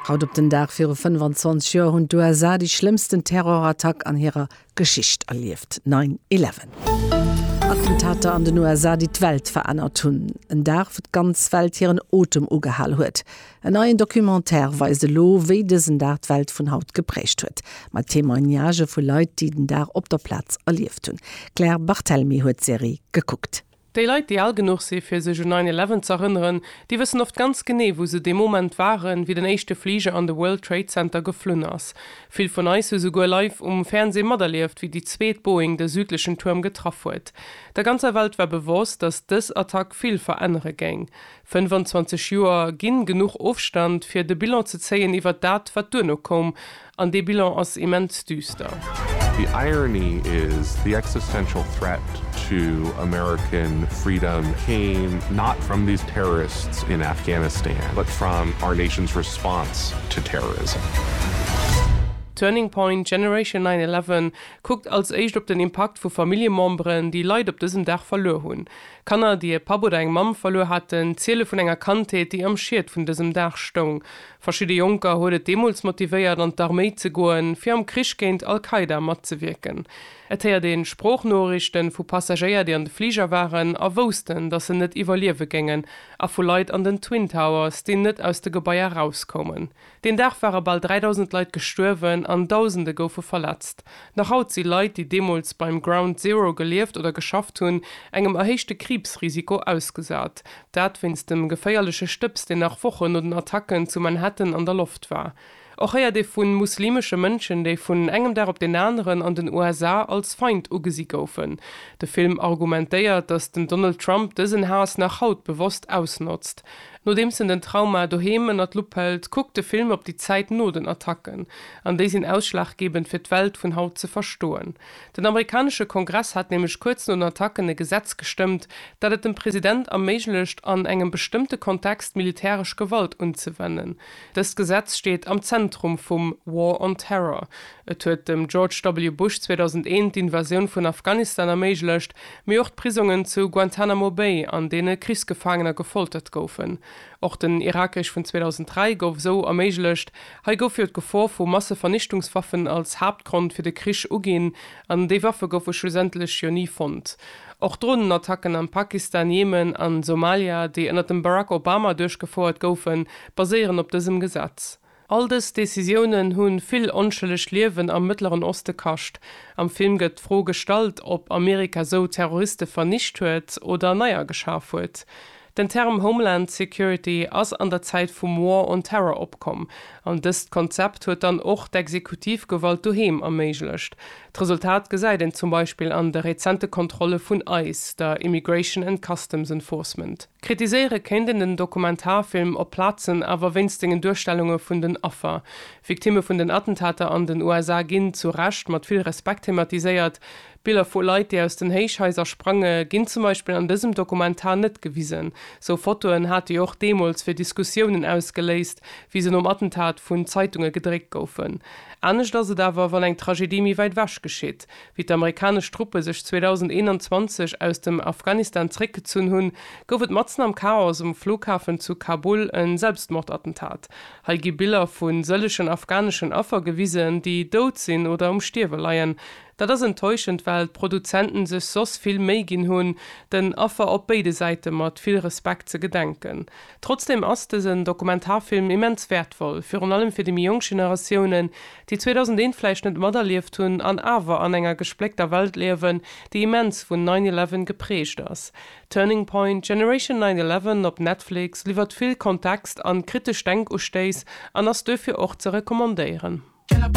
Haut op den Dag viru 25 Joer hunn d'USA déi schlëmmsten Terrorattack an hirer Geschicht erlieft, Nine Eleven. Attentater an den USA, déi d'Welt verännert hunn. En Dag, wou d'ganz Welt hiren Otem ugehal huet. En neien Documentaire weist elo, wéi dësen Dag d'Welt vun haut geprägt huet. Mat Témoignagë vu Leit, déi den Dag op der Plaz erlieft hunn. D'Claire Barthelemy huet d'Serie gekuckt. Déi Leit, déi al genuch si fir sech un nine eleven z'erënneren, déi wëssen oft ganz genee, wou se dee Moment waren, wéi den éischte Fliger an de World Trade Center geflunn ass. Vill vun eis hu souguer live um Fernsee materlieft, wéi déi zweet Boeing de südlechen Tuerm getraff huet. Der ganzer Welt war bewosst, datt dës Attack vill verännere géing. 25 Joer ginn genuch Ofstand, fir de Bilan ze zéien iwwert dat, wat duerno koum. An dee Bilan ass immens düster. The irony is, the existential threat to American freedom came not from these terrorists in Afghanistan, but from our nation's response to terrorism. Turning Point, Generation 9/11 kuckt als éischt op den Impakt vu Familljememberen, déi Leit op dësem Dag verluer hunn. Kanner, déi e Papp oder eng Mamm verluer haten, ziele vun enger Kandheet, déi am Schiet vun dësem Dag stoung. Verschidde Jonker huet et deemools motivéiert an d'Arméi ze goen, fir am Krich géint Al-Qaida matzewierken. Et héiert een Sproochnoriichten vu Passagéier, déi an de Fliger waren a woussten, datt se net iwwerliewe géingen, a vu Leit an den Twin Towers, déi net aus de Gebaier erauskoumen. Deen Dag ware bal 3.000 Leit gestuerwen an Dausende goufe verletzt. Nach haut si Leit, déi deemools beim Ground Zero gelieft oder geschafft hunn, engem erhéichte Kriibsrisiko ausgesat. Dat wéinst dem geféierleche Stëbs, deen nach Wochen no den Attacken zu Manhattan an der Loft war. Och héiert ee vu muslimesche Mënschen, déi vun engem Dag op deen aneren an den USA als Feind ugesi goufen. De Film argumentéiert, datt den Donald Trump dësen Haass nach haut bewosst ausnotzt. Nodeems en den Trauma doheem ënner d'Lupp hëlt, kuckt de Film op déi Zäit no den Attacken. An déi sinn ausschlaggebend fir d'Welt vun haut ze verstoen. Den amerikanesche Kongress hat nämlech kuerz no den Attacken e Gesetz gestëmmt, dat et dem President erméiglecht, an engem bestëmmte Kontext militäresch Gewalt unzewennen. Dëst Gesetz steet am Zentrum vum War on Terror. Et huet dem George W. Bush 2001 d'Invasioun vun Afghanistan erméiglecht, mee och d'Prisongen zu Guantanamo Bay, an deene Krichsgefaangener gefoltert goufen. Och den Irakkrieg vun 2003 gouf esou erméiglecht, Hei gouf jo d'Gefor vu Massevernichtungswaffen als Haaptgrond fir de Krich uginn, an déi Waffe goufe schlussendlech jo ni fonnt. Och Dronenattacken am Pakistan, Jemen a Somalia, déi ënner dem Barack Obama duerchgefouert goufen, baséieren op dësem Gesetz. All dës Decisiounen hu vill onschëlleg Liewen am Mëttleren Oste kascht. Am Film gëtt d'Fro gestallt, ob Amerika sou Terroriste vernicht huet oder neier geschaf huet. Den Term Homeland Security ass an der Zäit vum War on Terror opkomm, an dëst Konzept huet dann och d'Exekutivgewalt doheem erméiglecht. D'Resultat gesäit een zum Beispill an de rezente Kontrolle vun ice, der Immigration and Customs Enforcement. Kritiséiere kéint een den Dokumentarfilm op Plazen awer wéinst sengen Duerstellunge vun den Affer. Victimme vun den Attentater an den USA ginn, zu Recht, mat vill Respekt thematiséiert. Biller vu Leit, déi aus den Héichhaiser sprange, ginn zum Beispill an dësem Dokumentar net gewisen. Sou Fotoen hate jo och deemools fir Diskussiounen ausgeléist, wéi se nom Attentat vun Zeitunge gedréckt goufen. Anescht ass et awer, wann eng Tragedie méi wäit ewech geschitt, wéi d'amerikanesch Truppe sech 2021 aus dem Afghanistan zeréckgezunn hunn, gouf et matzen am Chaos um Flughafen zu Kabul e Selbstmordattentat. Hei gi Biller vu sëllegen afghaneschen Affer gewisen, déi dout sinn oder um Stierwe leien. Dat ass enttäuschend, well d'Produzenten sech soss vill Méi ginn hunn, den Affer op béide Säite mat vill Respekt ze gedenken. Trotzdem ass dësen Dokumentarfilm immens wäertvoll, virun allem fir déi méi jonk Generatiounen, déi 2001 vläicht net materlieft hunn an awer an enger gespléckter Welt liewen, déi immens vun nine eleven geprägt ass. Turning Point, Generation nine eleven op Netflix liwwert vill Kontext an kritesch Denkustéiss an ass duerfir och ze recommandéieren.